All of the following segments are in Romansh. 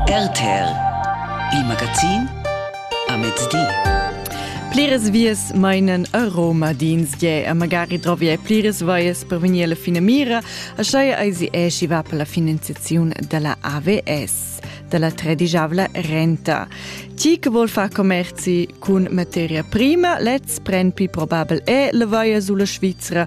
RTL, il magazin a mezdi. Pliras vias meinen a Roma d'insdie a magari drovia pliras vaias per venir alla fine mira, a schai eisi esci va per la finanziazione della AVS, della tredigiavla renta. Chi che vuol far commerzi cun materia prima, lez pren più probabel è le vaia sulla Svizzera,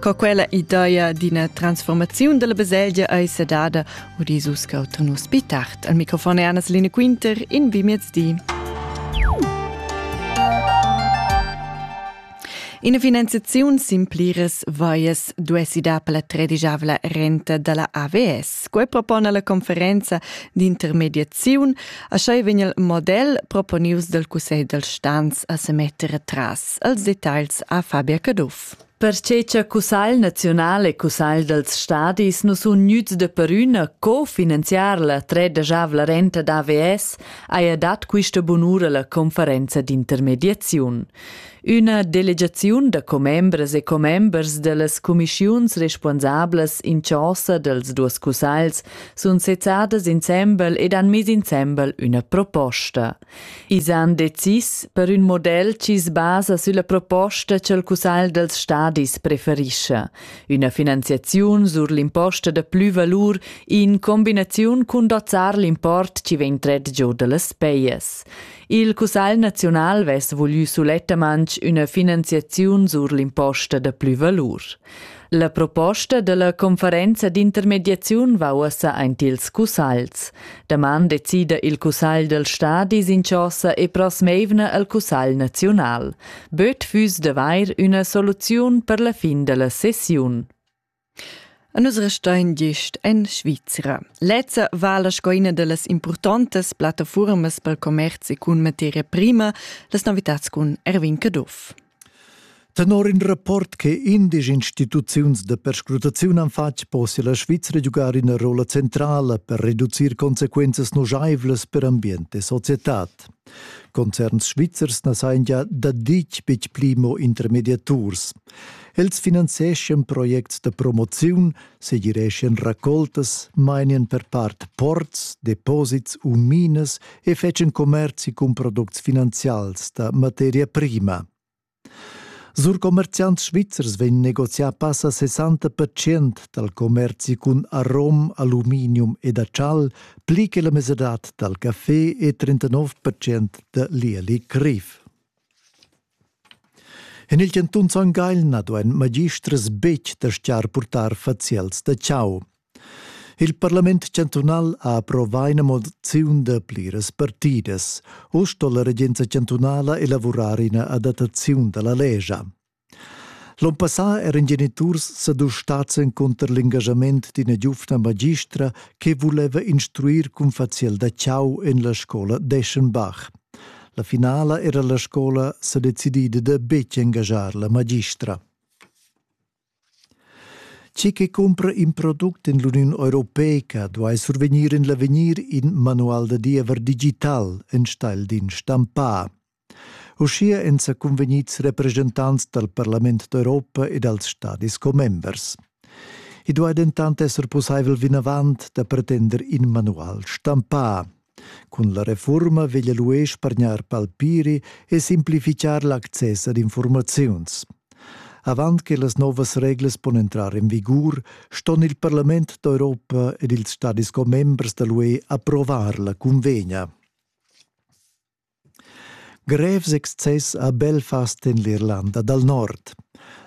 Co quella ideia d'ina transformaziun della baselgia ei sedada, udis uscau tunus pi tard. Al microfon è Annas Line Quinter in Bimiez di. Ina finanziaziun sin pliras vaies duessi dar per la tredigiavla renta dalla AVS. Quei propona la conferenza d'intermediaziun, a schei vegn il model proponius dal Cussegl dal Stans a se metter atras. els detagls a Fabia Caduff. Perche cha Cussagl naziunal e Cussagl dals stadis nu sun gnüts da perüna co finanziar la tredegiavla renta d'AVS, haja dat quista bunura la conferenza d'intermediaziun. Üna delegaziun da commembras e commembers da las cumischiuns respuonsablas in chosa dels duos cussagls sun sezzadas insembel ed han mis insembel üna proposta. I's han decis per ün model chi's basa sülla proposta cha'l Cussagl dels stadis preferischa, üna finanziaziun sur l'imposta da plü valur in combinaziun cun dozzar l'import chi vegn tret giò da las pejas. Il Cussagl naziunal vess voglü sulettamaing üna finanziaziun sur l'imposta da plü valur. La proposta dalla conferenza d'intermediaziun va ussa aint ils cussagls. Daman decida il cussagl del stadi sinchosa e prosmeivna al cussagl naziunal. Böt füss d'avair üna soluziun per la fin della sessiun. A nus restein gist en Svizra. Lezza vala sco ina delles importantes plattaformas per commerci cun materia prima, las novitats cun Erwin Caduff. Tenor in rapport che indesch instituziuns da perscrutaziun han fatg, possia la Svizra giugar ina rolla centrala per reducir consequenzas nuscheivlas per ambient e societad. Concerns svizzers na sajan gia da ditg betg pli mo intermediaturs. Els finanzieschan projects da promoziun, segireschien raccoltas, mainien per part ports, deposits u minas e fecen commerzi cun products finanzials da materia prima. Sur commerziants svizzers vegn negozià passa 60% dal commerzi cun arom, aluminium ed acial, pli che la mesadad dal café e 39% da lieli criv. En il cantun Son Gagl na duain magistras betg dastgar purtar faziels da chau. Il parlament chantunal ha approvà ina moziun da pliras partidas. U sto la regenza chantunala elavurar ina adattaziun da la legia. L'on passà eran geniturs sadustads encunter l'engagament d'ina giuvna magistra che vuleva instruir cun faziel da chau en la scola d'Eschenbach. La finala era la scola sedecidida da betg engaschar la magistra. Chi che cumpra in product in l'Uniun Europeica duai survegnir in l'avegnir in manual da diever digital enstagl d'in stampà. Uschia èn sa convegnids representants dal Parlament d'Europa e dals stadis commembers. I duai dentant esser pussaivel vinavant da pretender in manual stampà, Cun la reforma veglia l'UE spargnar palpiri e simplificar l'access ad informaziuns. Avant che las novas reglas pon entrar en vigur, ston il Parlament d'Europa ed ils stadis commembers da l'UE approvar la cunvegna. Grevs excess ha Belfast en l'Irlanda dal Nord.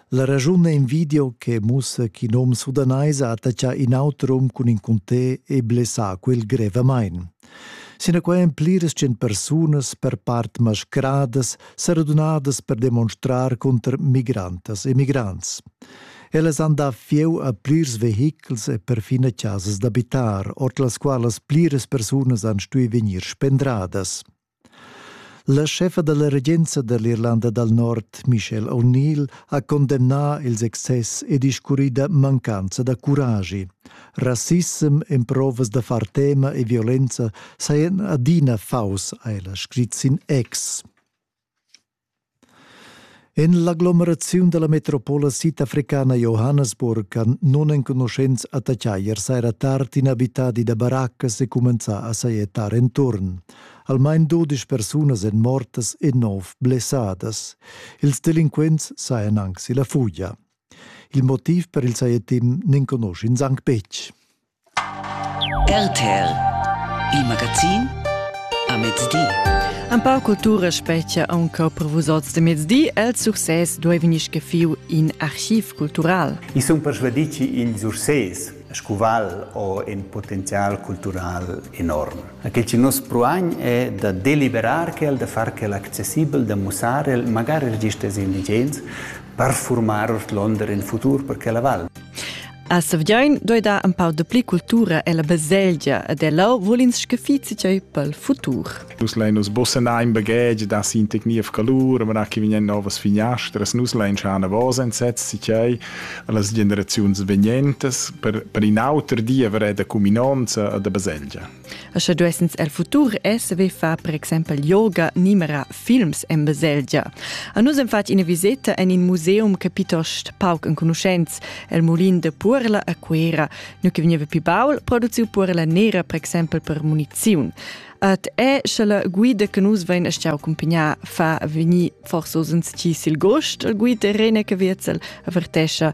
La raschun è in video che mussa ch'in um sudanais ha attaccà in auter um cun in cuntè e blessà quel grevamain. Sinaquai èn pliras tschient persunas per part mascradas, sa radunadas per demonstrar cunter migrantas e migrants. Ellas han da fieu a plirs vehichels e perfina chasas d'abitar, ord las qualas pliras persunas han stui vegnir spendradas. La chefa dalla regenza dall'Irlanda dal Nord, Michelle O'Neill, ha condemnà ils excess e discurrida mancanza da curagi. Rassissem, emprovas da far tema e violenza sajan adina faus, ha ella scrit sin ex. En l'aglomeraziun dalla metropola sidafricana Johannesburg han nunenconuschents attaccai ier saira tard in abitadi da baraccas e cumenzà a sajettar enturn. Almain dudisch persunas èn mortas e nov blessadas. Ils delinquents sajan anc si la fugia. Il motiv per il sajettim n'enconusch'ins anc betg. RTL Il magazin a mezdi. Empau cultura spetgia aunca per vus oz de mezdi. El success duei vegnir scaffiu in archiv cultural. I sun persuadì che il success scuval o in potenzial cultural enorm. Aquel che nos proagn è da deliberar quel, da far quel accessibel, da mussar el, magari registers indigens, per formar Londra in futur per quella val. A Sevgiain doi dar un pau de pli cultura e la baselgia ed ella vul ins scafizi tgei pel futur. Nus lein nus bossena in bagage da sin tecnief calur, ma che vegnan novas finastras, nus lein schar navos entsetz si tgei las generaziuns vegnentas per, per in auter diever e da cuminonza e da baselgia. E sche duessens el futur e saver far per exempel yoga, nimera, films en baselgia. A nus hem fatg ina viseta en in museum che piuttost pauc enconuschents, el mulin de Puerla a Cuera, nu che veniva pi baul, produziu Puerla nera per exempel per muniziun. Et è sche la guida che nus vein a stiau accompagnar fa veni forse osens ci sil gost, il guida Rene Caviezel avertescha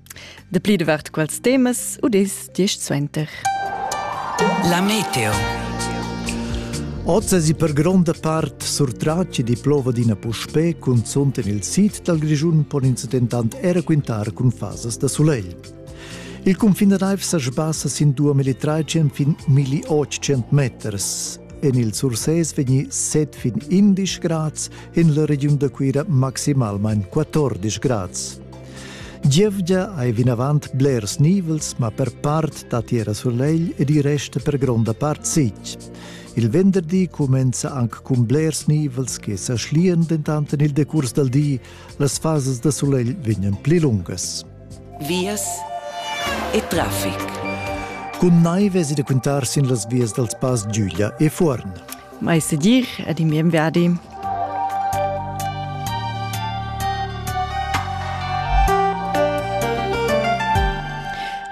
Dapli davart quels temas udis diesch suenter. La meteo. Oz è per gronda part surtratg di plova d'ina puspè, cunzunt en il sid dal Grischun pon ins dentant era quintar cun fasas da sulegl. Il cunfin da naiv sa sbassa sin 2.300 fin 1.800 meters. En il Surses vegni 7 fin 11 grads, en la regiun da Cuira maximalmain 14 grads. Gievgia ei vinavant blers nivels, ma per part dat era sulegl ed i resta per gronda part sitg. Il venderdi cumenza anc cun blers nivels che sa schlian dentant en il decurs dal di. Las fasas da sulegl vegnan pli lungas. Vias e traffic. Cun naiv esi da quintar sin las vias dals pass Giuglia e Fuorn. Mai sedir ed in bien viadi.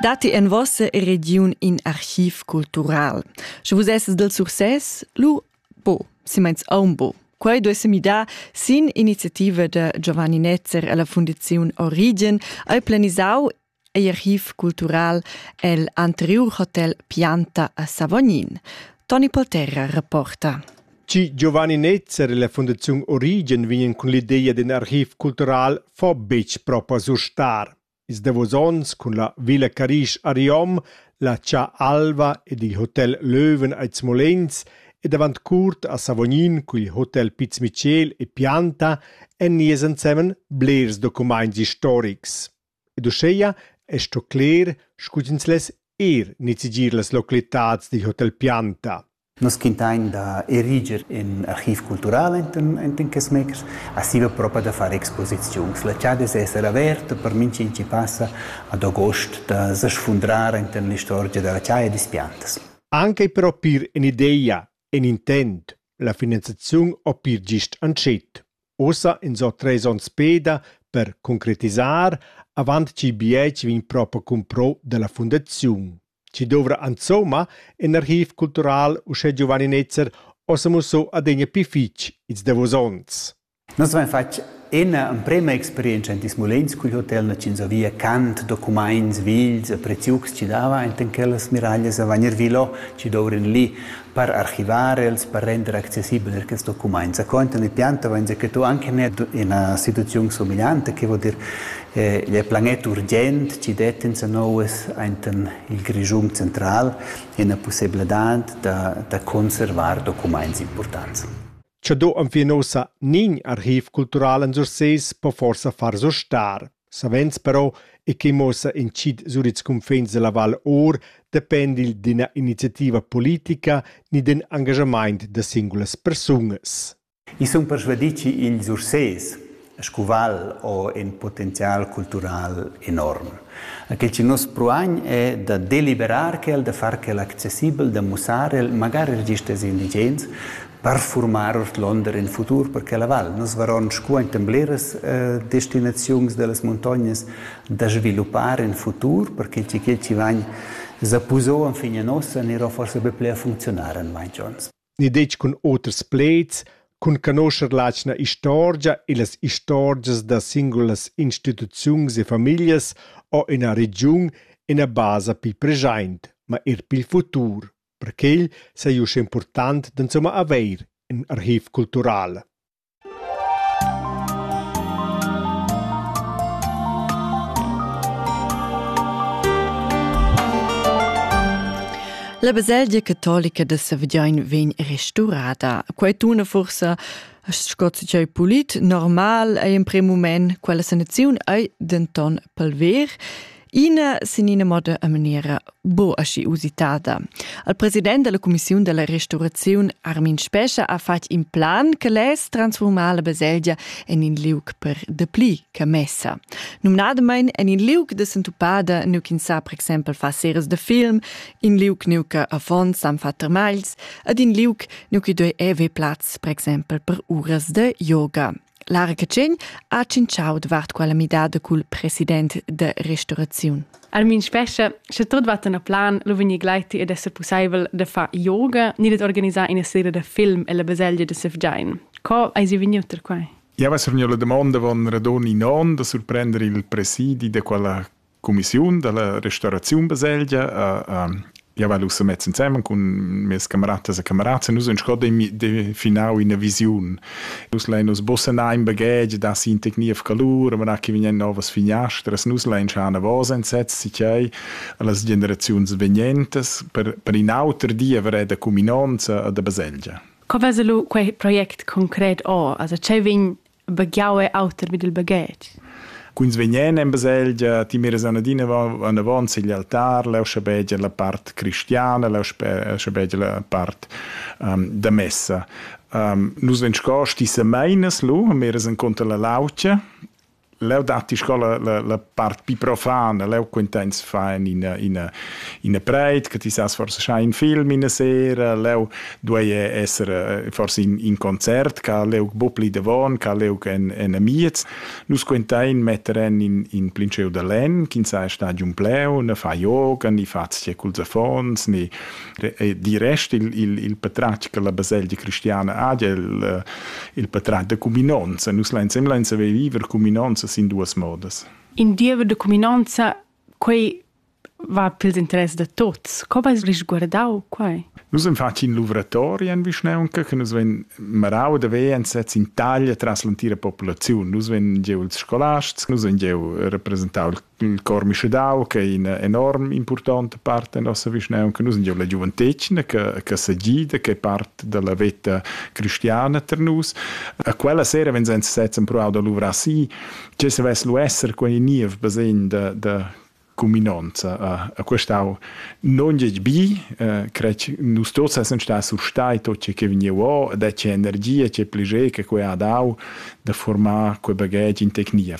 Dati en vossa region in archiv cultural. Sche vus esses del success, lu bo, si meins aumbo. Quei duesse mi da sin iniziativa de Giovanni Netzer e la Fundazione Origen ei planisau ei archiv cultural el anteriur hotel Pianta a Savognin. Toni Polterra reporta. Ci Giovanni Netzer e la Fundazione Origen vegnan cun l'idea d'in archiv cultural fa betg propo surstar. Ils davos onns cun la Villa Carisch a Riom, la Cia Alva ed il Hotel Löwen a Smolenz ed avant curt a Savognin cun il Hotel Piz Michel e Pianta en nies ensemen blers documents historics. Ed uschea es sto cler scu'ch'ins less eir nizzegier las localitats dil hotel Pianta. Nus quintain da eriger ün archiv cultural enten enten quests makers. A siva propa da far exposiziuns. La chad es esser averta per minch'in chi passa ad agost da sfundrar enten l'istorgia da la chaja e dis Piantas. Anche però pir ün'ideia In intent, la finanziaziun ho pir gist antschet. Ussa ins ho tres ons peda per concretisar avant chi BH vegn propa cumpro da la fundaziun. Chi douvra insomma in archiv cultural uschè Giovanni Netzer ho sa musso adegna pii fich ils davos ons. Nus avain fatg ina emprema experientscha en ils mulins cul hotel Nacinzà via cant, documaints, vils e preziucs chi dava enten quellas miraglias a Vagner Vilo chi douvran lì per archivar els, per render accessibel er quels documaints. Sco enten il piant avain già que tu anche ne ina situaziun somiglianta, che vuol dir eh, il planet urgent chi det insanouas enten il Grischun central ina pussebladad da, da conservar documaints importants. Cha do enfin ussa nin archiv cultural en Surses po forsa far sustar. Savens però, e quei muossa incid sur ils cunfins della Val Or, depend il d'ina iniziativa politica ni d'in engagamaint da singulas persunas. I sun persvadì chi ils Ursés, scuval o in potenzial cultural enorm. Quel che nos proagn è da deliberar quel, da far quel accessibel, da mussar el, magari register indigens, per formar ordlonder in futur per quella val. Nos varon scuaintan bleras eh, destinaziuns dellas montognas da sviluppar in futur, perché chi che ci vagn zapusò an fine nossa, anirò forse be ple a funzionar en mai Jones. ni detg cun oters plaids, cun canoscher l'atgna istorgia e las istorgias da singulas instituziuns e famiglias o ina regiun ina basa pil preschaint, ma eir pil futur. Per quel sai uss impurtant d'insumma haver ün archiv cultural. La baselgia catolica da Savognin vegn restaurada. Quei tuna forsa sco tgei polit normal ei en prem mument quella sanaziun ei denton palver. Ina sin ina moda a maniera bo aschi usitada. Al president della commissiun della restaurazione Armin Spescha ha fatg in plan che les transformar la baselgia en in liug per depli che messa. Numnadamain en in liug de sentupada nu kin sa per exempel fa series de film, in liug nu che avon san fa termagls, ad in liug nu che doi eve plaz per exempel per uras de yoga. Lara Catschegn ha tschintschau davart quella midada cul president de restauraziun. Armin Spescha, sche tot va tenor plan, lo vegnir gleiti ed esser pusseivel de far yoga ni ded organisar ina seria da film ella baselgia de Sevgein. Co eis jeu vegniu tar quei? Java survegniu la damonda von radon in onn da surprender il presidi de quella cumissiun da la restauraziun baselgia a ja weil usse met zusammen con mes cameratas e camerats nus uns gerade definau in vision nus lein us bossen ein bagage da si in technia calur ma che vegnen novas finastras nus lein schana vos entsetz si chai las generazions venientes per per in auter di avere da cuminanza da baselgia Co veselo quei project concret o? Also cheu vegn baghiau è auter vid il baghetg. Quins vegnen en baselgia, ti miras anadina anavant sigl altar, leu schabegia la part cristiana, leu schabegia la part um, da messa. Um, nus vegn sco sti semeinas lu, miras en conto la lautia, leu datti sco la, la, la part pi profan, leu quintains fa in ina ina ina preit che ti sas forse schai in film in sera, leu duei esser eh, forse in, in concert, ca leu bupli davon, ca leu en en amiez. Nus quintain metteren in in plinceu da len, kin sai stadium pleu, ne fa yoga, ni fa cul zafons, ni di rest il, il, il patratg che la baselgia cristiana ha, il, eh, il patratg da cuminanza. Nus lansem lansem viver cuminanza sin duas modas. In diever de cuminanza, quei va pels interess da tots. Co vais risguardau quai? Nus am faci in luvratori en Vischneunca, che nus ven marau da ve en sez in taglia tras l'antira popolaziun. Nus ven gieu ils scolasts, nus ven gieu rappresentau il il cor mischedau che è in enorm important part da nossa vischnaunca. Nus abbiamo la giuventetgna che, che sa gida, che è part della veta cristiana per nus. A quella sera wenn senza setzen provato da luvrar si, che se vess lu esser quei niev basegn da, da cuminonza a, a questau non gec bi eh, crec nus tots essen sta sur stai tot ce che vegniu o ed è c'è energia c'è pligeca che ha dau da formar quei bagage in tecnia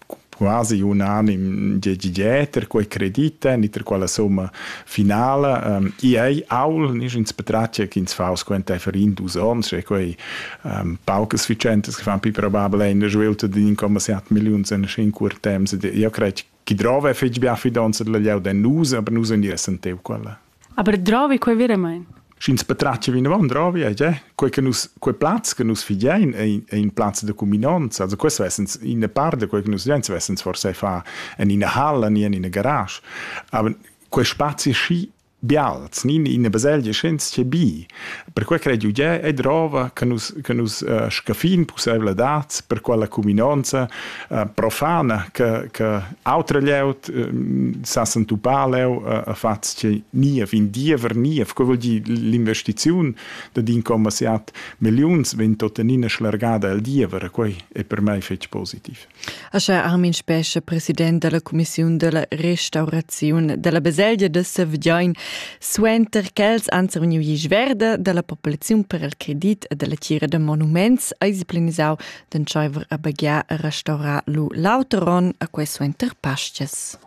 quasi unanim de dieter quei credite ni ter quella somma finala um, i ei aul nis ins betratge che ins fa squenta für in dus ons e quei um, paucas vicentes che fan più probabile in svilta di in comma set million in in cur temps io crei chi drove fetg bia fidonza della lieu de nus aber nus ni essent eu quella Aber drovi quei veramein. Sch'ins patratga vinavon drovi ei eh? quei che nus quei plaz che nus figein ei, ei in plaz de cuminonza also questo essens in par de quei che nus vein essens forse fa en ina hall ni en ina garage aber quei spazi schi bials ni in baselgia schens che bi Perquai crai Giugiè e drova che nus, che nus uh, scaffin pussaivladads per quella cuminanza uh, profana che, che autra lieut uh, sa sentupà leu uh, fatg che ni a fin diever ni a vuol dir l'investiziun da din comma siat milliuns vegn tuttenina schlargada al diever e quai è per mai fetg positiv. Aschia Armin Spescha, president dalla cumissiun dalla restauraziun dalla baselgia da Sevgein, suenter ch'els han survegniu glisch verda dalla populaziun per il credit e dalla tgira da monuments, eisi planisau d'entscheiver a baghiar e restaurar lu l'auter onn, a quei suenter Paschias.